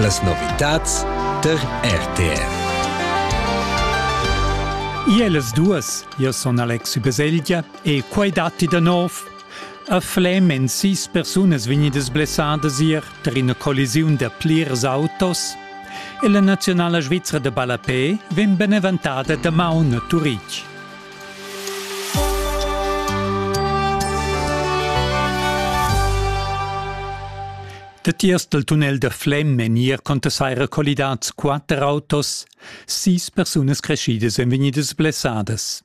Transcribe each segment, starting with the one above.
Las novitads tar RTR. Ielas duas, io son Alexi Beselgia e quai datti da nov. A Flem èn sis persunas vegnidas blessadas ier tar ina collisiun da plirs autos e la naziunala svizra da ballapé vegn beneventada damaun a Turitg. Datiers dal tunnel da Flem èn ier conta saira collidads quatter autos. Sis persunas creschidas èn vegnidas blessadas.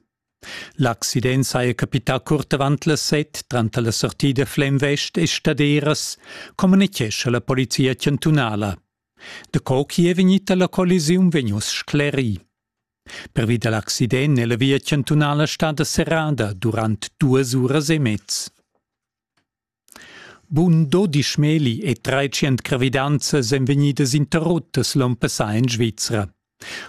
L'accident saja capità curt avant las set, tranter la sortida Flem West e Staderas, communitgescha la polizia chantunala. Daco chi è vegnita la collisiun vegn uss sclerì. Pervi da l'accident è la via chantunala stada serrada durant duas uras e mez. Bun dodisch meli e treicient gravidanzas èn vegnidas interruttas l'onn passà en Svizra.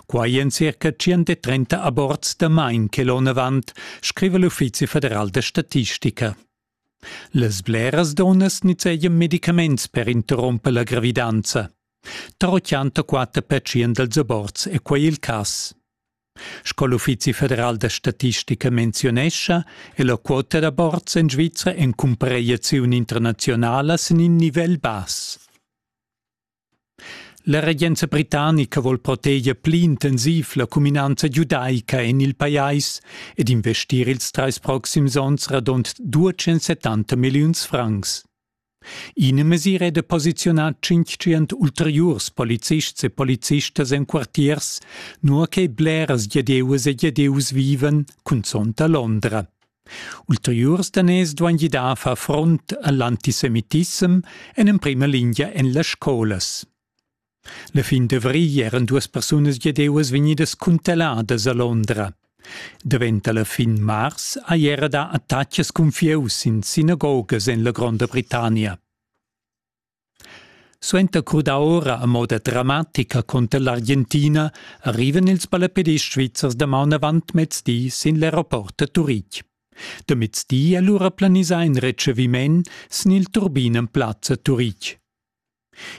Quai èn circa 130 aborts damain che l'onn avant, scriva l'Uffizi federal da statistica. Las bleras dunnas nizzegian medicaments per interrumper la gravidanza. Però chanta quatter pertschient dals aborts è quai il cass. Sco l'Uffizi federal da statistica menzionescha, è la quota d'aborts en Svizra en cumparegliaziun internazionala sin in nivel bass. La regenza britannica vol proteger pli intensiv la cuminanza giudaica en il pajais ed investir ils trais proxims onns radund 270 milliuns francs. Ina mesira è da posiziunar 500 ulteriurs polizists e polizistas en quartiers, nua che bleras giadeuas e giadeus vivan, cunzont a Londra. Ulteriurs daners duain gidar a far front a l'antisemitissem en emprima lingia en las scolas. La fin d'avrigl eran duas persunas giadeuas vegnidas cuntelladas a Londra. Daventa la fin mars ha era dà attaccs cun fieus in sinagogas en la Gronda Britannia. Suenter crudar ora a moda dramatica cunter l'Argentina arrivan ils ballapedists svizzers damaun avant mezdi sin l'aeroport da Turitg. Da mezdi è lura planisà in retscheviment sin il turbin en plazza Turitg.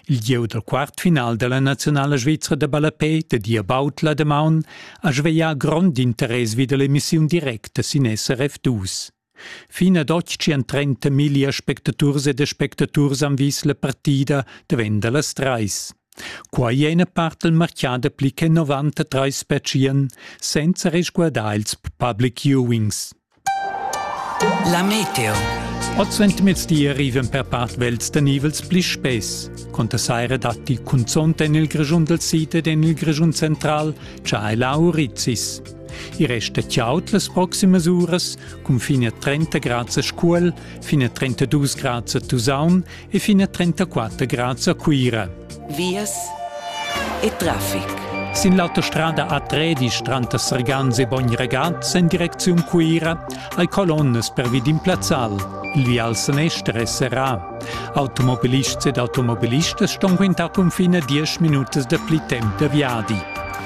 Il gieu dal quartfinal da la nazionala svizra da ballapè da Dia Bautla damaun ha sveglià grond interess vi da l'emissiun directa sin SRF 2. Fin ad otg tschien trenta miglia spectaturs ed spectaturs han vis la partida davenda las trais. Quai è ina part del marchà da pli che 93 spetschien, senza resguardar ils public viewings. La meteo. Oz entamez di arrivan per part vels da nivels pli spess. Conta saira datti cunzont en il Grischun del Sid ed en il Grischun central, c'ha ei la Aurizis. I resta chaut las proximas uras cun fin a 30 grads a Scuol, fin a 32 grads a Tusaun e fin a 34 grads a Cuira. Vias e traffic. Sin l'autostrada A13 tranter Sergans e Bogn-Regat en direcziun Cuira hai colonnas per vid in plazzal. Il vial sanester è serrà. Automobilists ed automobilistas ston quintar cunfin a 10 minutas da pli temp da viadi.